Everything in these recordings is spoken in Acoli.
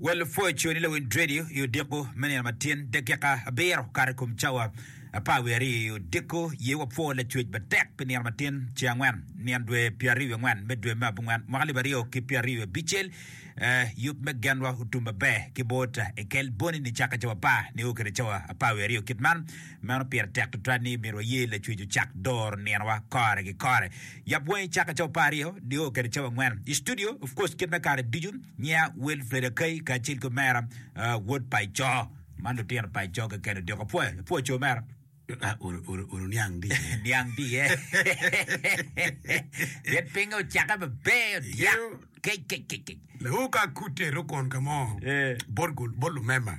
Wel pwoco ni lawinj redio i odiko me nino ma tyen dakika abiro okato i kom cawa apar wiye aryo i odiko. Ye wapwor lacwec matek pi nino ma tyen ce angwen nyen dwe pyeraryo wiye angwen me dwe me abongwen mwaka alip aryo ki pyeraryo wiye abicel. Eh, yub me genwa otum maber ki bot Ekel boni ni caka cawa apar nio kede cawa apar wiye aryo kit man. Meno pire tek tutwal ni myero waye Lacwec ocak doro ninowa kore ki kore. Yap wangi cak ki cawa pa aryo, dyeyo kede cawa angwen. I studio, of course, kit me kare ducu, nyiya Wilfred Akai kacel ki omera Wod Paco. Man lutino paco keken odiko. Apwoyo, apwoyo co mera. Uru niang di ye. Niang di ye. Pien pinge ocake maber odyak. Kec, kec, kec, kec. Lewu ka akute rukon ka mo bot lumema.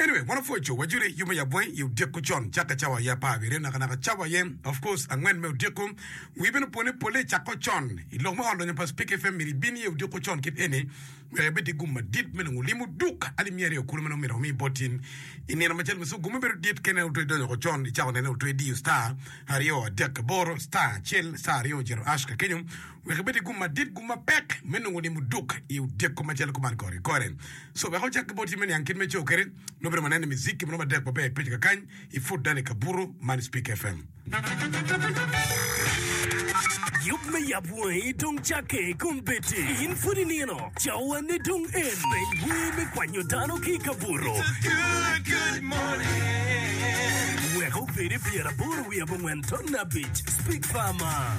Anyway, wan opwo co, wajoli yub me yabweny i odyeku con, cakke cawa aye apar abiryo, nakanaka cawa aye, of course, angwen me odyeku. Wii bene opwo ni polle icakko con. I lok me ot lonyo pa Speke FM myero ibin iye odyeku con kit eni wek ibed ki gum madit me nongo lim oduk. Alimi aryo kulu ma nongo myero wami bot in i nino macel mucuku. Gummi bedo dit ka ineno otwe idonyo oko con, icako nene otwe idiyo star aryo adek aboro, star acel, star aryo, jito hash kakenyo. Wek ibed ki gum madit, gum mapek me nongo nimo duk i otyeko macalo kuman kore kore. Co wek ocak ki bot cim me niang kit me co kede, nongo bedo manene mizik ki munu madek maber ipeco kakany i Fort Dani Kabuto man i Spik FM. Yub me yap wangi dong cakke kun bedi in pud inino, cawane dong en. Peny wer me kwanyo dano ki i kabuto. Wek obedi pyeraboro wiye abongwen ton abic, Spik Farmer.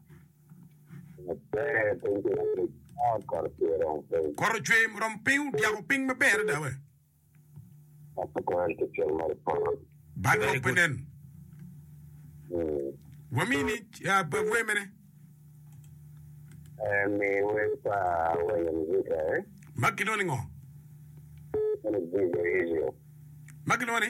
Poto cwer murom piny odyako piny maber adada we. Bad lok pe nen. Wamini ah, pa wer mene ma kilwongo ni ngo? Ma kilwongo ni?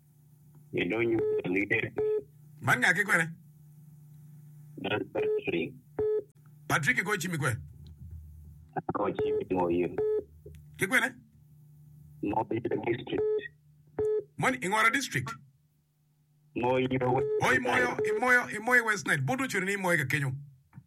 gidonyo ka Lidet. Man ngaki kwene? Man Patrick. Patrick igoyo cim i kwe? Agoyo cim i Moyim. Ki kwene? Moyo district. Moni ingoro district? Moyo. Oh i Moyo, i Moyo, i Moyo West Nile. Buto ocwero ni i Moyo ka kenyo.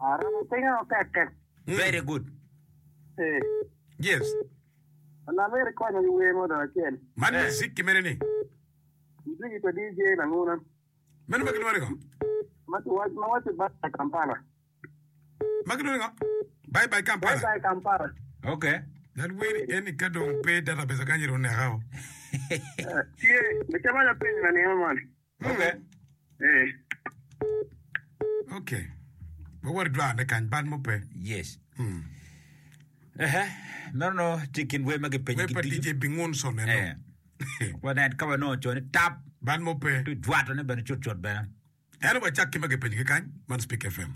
Aromo pinge o kekek. Very good. Ee. Yes. Alam myero ikonya ki wer mo dong acel. Man eh. Muzik ki mene ni. Muziki pa DJ Languna. Meno ma gilwongo ni ngo? Ma kiwac ma waco Bye Bye Kampala. Ma gilwongo ni ngo? Bye Bye Kampala. Bye Bye Kampala. Okay. Lal wer eni ka dong pe database aganyi ru neka o. Tye, me caman apenyo na nino man. Murre. Ee. Okay. Wawot i dwarne kany, bal mo pe. Yes. Mm. Ehe, meno no tye kin wer ma gipenyo Wer pa giducu. DJ Bingun so neno. Eh. Wanen ka wanongo co ni tap Bal mo pe. tu jwatone bene cutcut bene. Eno wacak ki ma gipenyogi kany, man Speak FM.